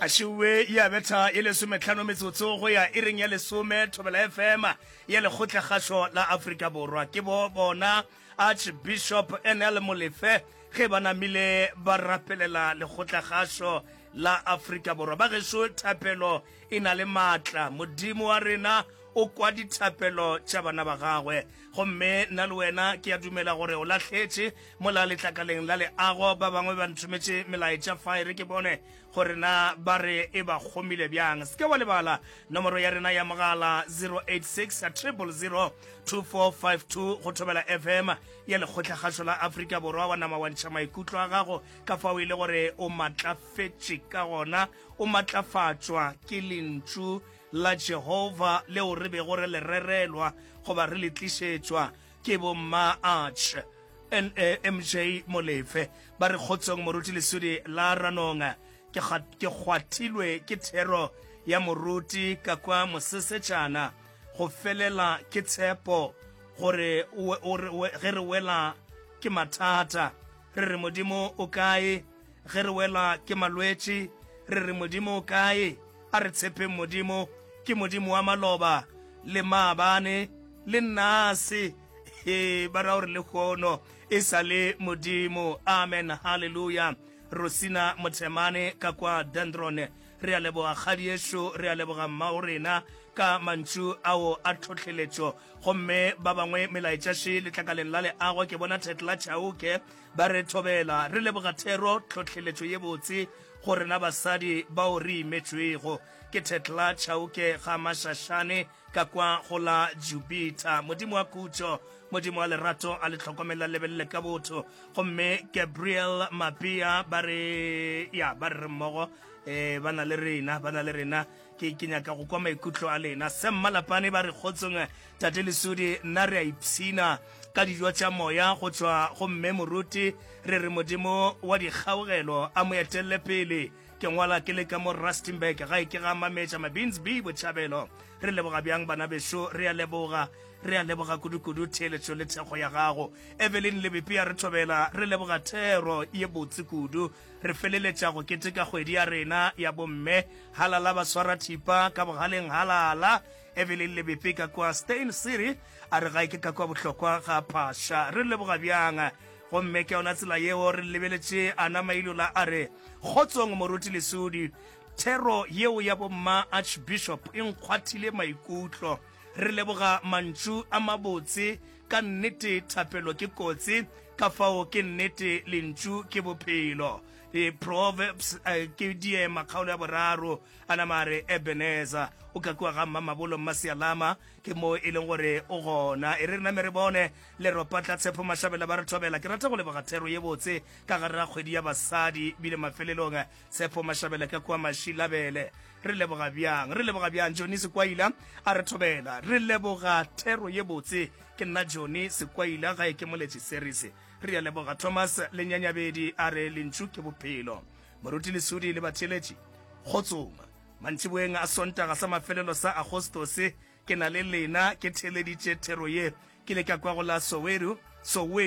a šiwe ya betha e lesometlhano metsotso go ya e reng ya lesome thobela fm ya lekgotla kgašo la afrika borwa ke bo bona archbishop nl molefe ge ba namile ba rapelela lekgotla kgašo la afrika borwa ba gešo thapelo e na le maatla modimo wa rena o kwa dithapelo tša bana ba gagwe gomme nna le wena ke a dumela gore o lahletše Mola letlakaleng la leago ba bangwe ba nthometše melaetša fa e re ke bone gore na ba re e ba kgomile bjang. Se ke wa lebala nomoro ya rena ya mogala 086 000 2452 go thobela FM ya Lekgotlakgašo la Afrika Borwa. Wa nama wa ntšha maikutlo a gago ka fao e le gore o matlafetše ka gona, o matlafatšwa ke lentšu la Jehova leo re bego re le rerelwa goba re le tlišetšwa. Ke bo mma Arch nne MJ Molefe ba re kgotsong moruti lesudi la Ranong. Ke kga, ke kgwathilwe ke thero ya moruti ka kwa Mosesetšana go felela ke tshepo gore we, o re we, ge re wela ke mathata re re Modimo o kae Ge re welwa ke malwetši, re re Modimo o kae? A re tshepeng Modimo, ke Modimo wa maloba le maabane le nnase. He, ba ra gore lehono e sa le Modimo. Amen. Haleluya. Rosina Mothemane ka kwa Dendron, re a leboga kgadi yešo, re a leboga mmao rena ka mantšu ao a tlhohleletšo. Gomme ba bangwe melaetša še letlakaleng la leago, ke bona Thetla Chauke Ba re thobela, re leboga thero, tlhohleletšo ye botse go rena basadi bao re imetšwego. Ke Thetla Chauke ga Mashahlane ka kwa go la Jupiter. Modimo wa khutšo, Modimo wa lerato a le tlhokomele a lebelele ka botho. Gomme Gabriel Mapea ba re, ya, ba re re mmogo, eh, ba na le rena, ba na le rena. ke ke nyaka go kwa maikutlo a lena se mmalapane ba re kgotsong tate lesudi nna re a ipshina ka dijo tša moya go tšwa go mme moruti re re modimo wa dikgaogelo a mo etelele pele ke ngwala ke le ka mo rustenburg ga e ke ga mametša mabins b botšhabelo re leboga bjang bana bešo re a leboga re a leboga kudukudu theeletšo le thekgo ya gago evelyn lebepi a re thobela re leboga thero ye botse kudu Re feleletša go keteka kgwedi ya rena ya bomme halala ba swara thipa ka bogaleng halala. Evelyn Lebepe ka kwa Steyn City a re gae ke ka kwa bohlokwa ga phasha re leboga bjang gomme ke yona tsela yeo re lebeletše ana mailola a re kgotsong moruti lesudi thero yeo ya bomma archbishop e nkgwathile maikutlo re leboga mantšu a mabotse Ka nnete thapelo ke kotsi, ka fao ke nnete Lentšu ke Bophelo. E, Proverbs, a, ke diema, kgaolo ya boraro. A nama a re, Ebenezer, o ka kua ga Mmamabolo Mmasialama, ke moo e leng gore o gona. E re re name re bone Leropatlatshepo Mashabela ba re thobela. Ke rata go leboga thero ye botse ka gare ga kgwedi ya basadi, bile mafelelong Tshepo Mashabela ka kua Mashilabele, re leboga bjang, re leboga bjang. Johnny Sekwaila a re thobela, re leboga thero ye botse. Ke nna Johnny Sekwaila, ga e ke moletši series. Re a leboga. Thomas Lenyanyabedi a re lentšu ke bophelo. Moruti Lesudi le batheeletši, kgotsong. Mantšiboeng a Sontaga sa mafelelo sa Agostose, ke na le lena, ke theeleditše thero ye. Ke ile ka kwa go la Soweru, Soweto.